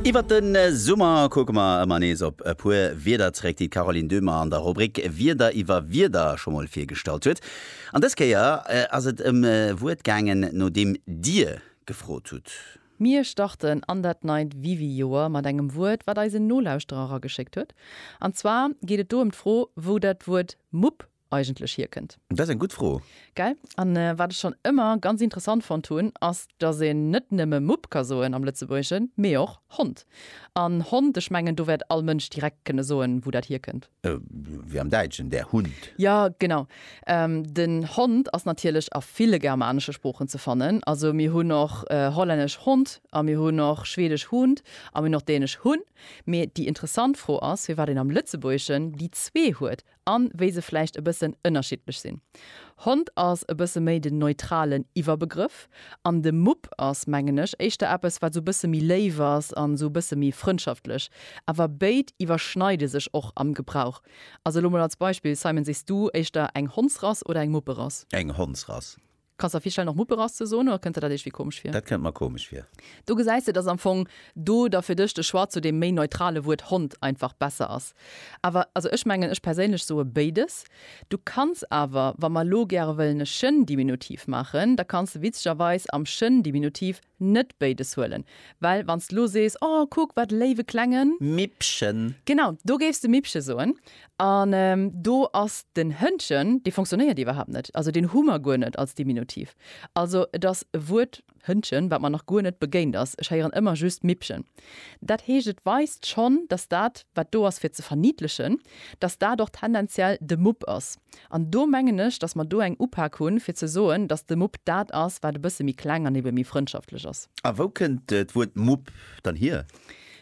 Iwwert de Summer kucke mer ëmmer nees op e puer Wierder zréck, déi d'Caroline Döhmer an der Rubrik Wierder iwwer Wierder scho mol virgestallt huet. An dës Kéier ass et ëm e Wuert gaangen, no deem Dir gefrot hutt. Mir starten an dat neit Wiwi-Joer mat engem Wuert, wat eis en Nolauschterer erageschéckt huet. An zwar geet et do ëm d'Fro, wou dat Wuert Mupp eigentlech hierkënnt? Dat ass eng gutt Fro. Gell? An wat ech schonn ëmmer ganz interessant fonnt hunn, ass, dass een net nëmme Mupp ka soen am Lëtzebuergeschen, mee och Hond. An Hond, ech mengen, do wäert all Mënsch direkt kënne soen, wou dat hierkënnt. Wéi am Däitschen, der Hund. Jo, genau. Den Hond ass natierlech a ville germanesche Sproochen ze fannen. Also mir hunn och hollännesch Hond a mir hunn och schweedesch Hund a mir hunn och dänesch Hun. Mee déi interessant Fro ass, firwat een am Lëtzebuergeschen déi zwee huet an wéi se vläicht e bëssen ënnerschiddlech sinn. Hond ass e bësse méi den neutralen Iwwerbegrëff an de Mupp ass, mengen ech, éischter eppes, wat esou e bësse méi léif ass an esou e bësse méi frëndschaftlech. Awer béid iwwerschneide sech och am Gebrauch. Also elo mol als Beispill, Simon, Sichs du éischter eng Hondsrass oder eng Mupperass? Eng Hondsrass. Kanns der virstellen och Mupperass ze soen oder kënnt der dat iergwéi komesch vir? Dat kënnt mer komesch vir. Do gesäis de, dass am Fong do da fir dech de Choix zu deem méi neutrale Wuert Hond einfach besser ass. Awer also ech mengen, ech perséinlech soe béides. Du kanns awer, wa mer elo gäre wëllen e Chien-Diminutiv maachen, da kanns de witzegerweis am Chien-Diminutiv Net béides huelen, well wann s de lo sees, O, kuck, wat e léiwe klengen. Mippchen! Genau, do géif s de Mippche soen. An do ass den Hëndchen, dee fonctionnéiert iwwerhaapt net. Also deen hu mer guer net als Diminutiv. Also et ass e Wuert, Hëndchen, wat mer nach guer net begéint ass. Ech héieren ëmmer just Mippchen. Dat heescht, et weist schonn, datt dat, wat do ass fir ze verniddlechen, datt dat och tendenziell de Mupp ass. An do mengen ech, dass mer do eng Upak hunn, fir ze soen, dass de Mupp dat ass, wat e bësse méi kleng an ebe méi frëndschaftlech ass. A wou kënnt d'Wuert Mupp dann hier?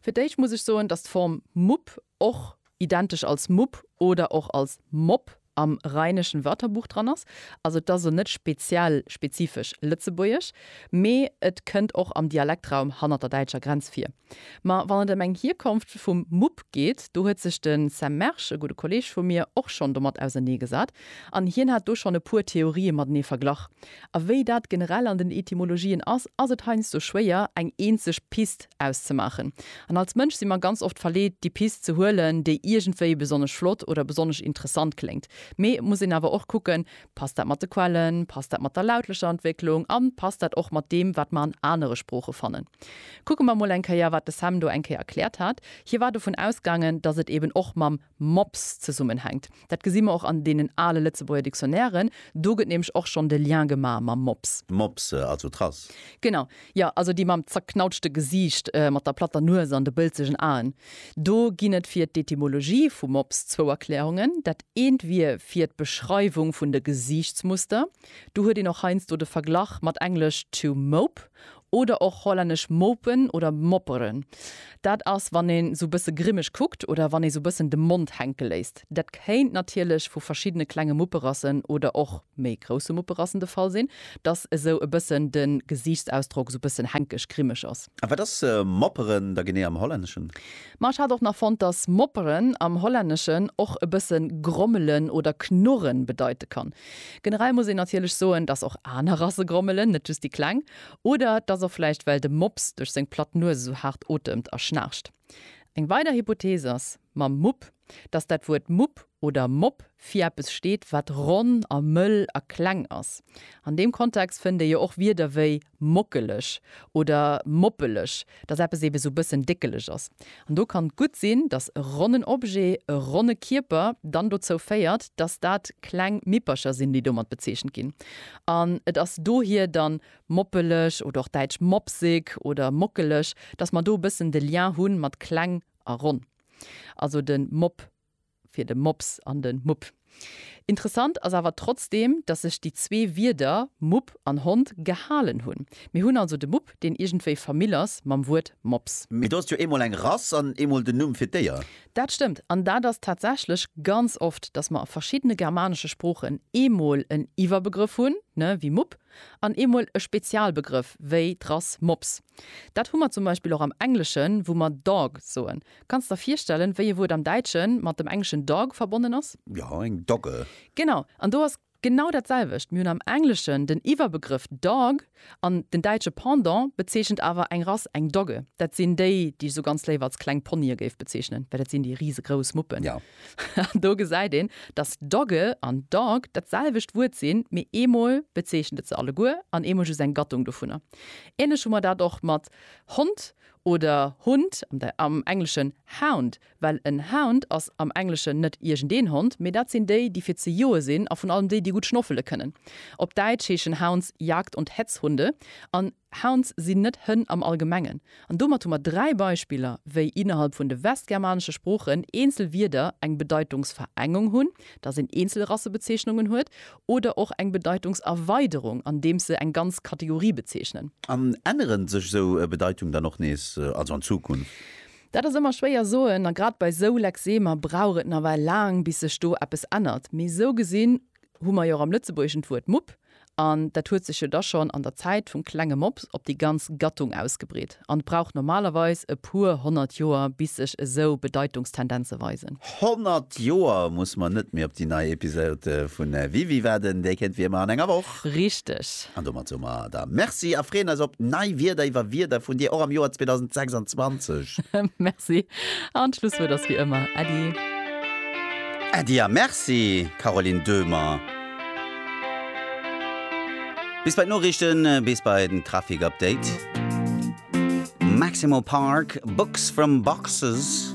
Fir d'éischt muss ech soen, dass d'Form Mupp och identesch als Mupp oder och als Mopp am Rheinischen Wörterbuch dran ass. Also et ass elo net speziell, spezifesch lëtzebuergesch, mee et kënnt och am Dialektraum hannert der däitscher Grenz vir. Ma wann et ëm eng Hierkonft vum Mupp geet, do huet sech de Sam Mersch, e gudde Kolleeg vu mir, och schonn domat auserneegesat an hien hat do schonn e puer Theorië matenee verglach. A wéi dat generell an den Etymologien ass, ass et heiansdo schwéier, eng eenzeg Pist auszemaachen. An als Mënsch si mer ganz oft verleet, déi Pist ze huelen, déi iergendwéi besonnesch flott oder besonnesch interessant kléngt. Mee et muss een awer och kucken, Passt dat mat de Quellen? Passt dat mat der lautlecher Entwécklung? An passt dat och mat deem, wat mer an anere Sprooche fannen? Kucke mer mol eng Kéier, wat de Sam do eng Kéier erkläert hat. Hie war dovun ausgaangen, datt et eben och mam Mops zesummenhänkt. Dat gesi mer och an deenen ale Lëtzebuerger Dictionnairen. Do gëtt nämlech och schonn de Lien gemaach mam Mops. Mops, also Trass. Genau. Jo, also déi mam zerknautschte Gesiicht, mat der platter Nues an de bëlzegen Aen. Do ginn et fir d'Etymologie vu Mops zwou Erklärungen. Dat eent wier fir d'Beschreiwung vun de Gesiichtsmuster. Do huet een och heiansdo de Verglach mat englesch to mope oder och hollännesch mopen oder mopperen. Dat ass, wann een sou bësse grimmeg kuckt oder wann ee sou bëssen de Mond hänke léisst. Dat kéint natierlech vu verschiddene klenge Mupperassen oder och méi grousse Mupperassen de Fall sinn, dass esou e bëssen de Gesiichtsausdrock esou e bëssen hänkeg, grimmeg ass. A wat ass Mopperen da genee am Hollänneschen? Ma ech hat och nach fonnt, dass Mopperen am Hollänneschen och e bësse grommelen oder knurren bedeite kann. Generell muss een natierlech soen, dass och aner Rasse grommelen, net just déi kleng. Oder et ass och vläicht, well de Mops duerch seng platt Nues esou haart otemt a schnaarcht. Eng weider Hypothees ass, mam Mupp. dass dat Wuert Mupp oder Mopp fir eppes steet, wat ronn a mëll a kleng ass. An deem Kontext fënnt ee jo och Wierder wéi mockeleg oder moppeleg, dass eppes eebe sou bëssen déckeleg ass. An do kann gutt sinn, dass e ronnen Objet, e ronne Kierper dann dozou féiert, dass dat kleng Mippercher sinn, déi domat bezeechent ginn. An et ass dohier dann moppeleg oder och däitsch mopsig oder mockeleg, dass mer do e bëssen de Lien hu mat kleng a ronn. Also de Mob fir de Mops an de Mupp. Interessant ass awer trotzdeem, datt sech déi zwee Wierder, Mupp an Hond, gehalen hunn. Mir hunn also de Mupp, deen iergendwéi Famill ass mam Wuert Mops. Mee do ass jo eemol eng Rass an eemol den Numm fir d'Déier. Dat stëmmt. An dat ass tatsächlech ganz oft, datt mer a verschiddene germanesche Sproochen eemol en Iwwerbegrëff hunn, ne, wéi Mupp, an eemol e Spezialbegrëff, wéi d'Rass Mops. Dat hu mer zum Beispill och am Engleschen, wou mer dog soen. Kanns der virstellen, wéi e Wuert am Däitschen mat dem engleschen dog verbonnen ass? Jo, eng Dogge. Genau. An do ass genau dat selwecht. Mir hunn am Engleschen den Iwwerbegrëff dog, an den däitsche Pendant bezeechent awer eng Rass, eng Dogge. Dat sinn déi, déi ech esou ganz léif als kleng Ponye géif bezeechnen, well dat sinn déi risegrouss Muppen. Jo. An do gesäit een, dass Dogge an Dog dat selwecht Wuert sinn, mee eemol bezeechent et se alleguer an eemol just eng Gattung dovunner. Ähnlech hu mer dat och mat Hond oder Hund, am Engleschen hound, well en Hound ass am Engleschen net iergendeen Hond, mee dat sinn déi, déi fir ze joe sinn a vun allem déi, déi gutt schnoffele kënnen. Op Däitsch heeschen Hounds Jagd und Hetzhunde an Hounds sinn net Hënn am Allgemengen, an domat hu mer dräi Beispiller, wéi innerhalb vun de westgermanesche Sproochen eenzel Wierder eng Bedeitungsverengung hunn, dass een eenzel Rassebezeechnungen huet, oder och eng Bedeitungserweiderung, andeems se eng ganz Kategorie bezeechnen. An änneren sech esou Bedeitung dann och nees, also an Zukunft? Dat ass ëmmer schwéier soen, a grad bei esou Lexemer brauch et nawell laang, bis sech do eppes ännert. Mee esou gesinn hu mer jo och am Lëtzebuergeschen d'Wuert Mupp, an dat huet sech jo da schonn an der Zäit vum klenge Mops op déi ganz Gattung ausgebreet an brauch normalerweis e puer honnert Joer, bis sech esou Bedeitungstendenze weisen. Honnert Joer muss mer net méi op déi nei Episode vun Wie wier wat? Déi kéint wéi ëmmer an enger Woch. Richteg. An domat soe mer der Merci a freeën eis op nei Wierder iwwer Wierder vun dir och am Joer 2026. Merci an d'Schlusswuert ass wéi ëmmer Äddi. Äddi a Merci Caroline Döhmer. Bis bei d'Noriichten, bis bei den Trafic Update. Maximo Park, Books from Boxes.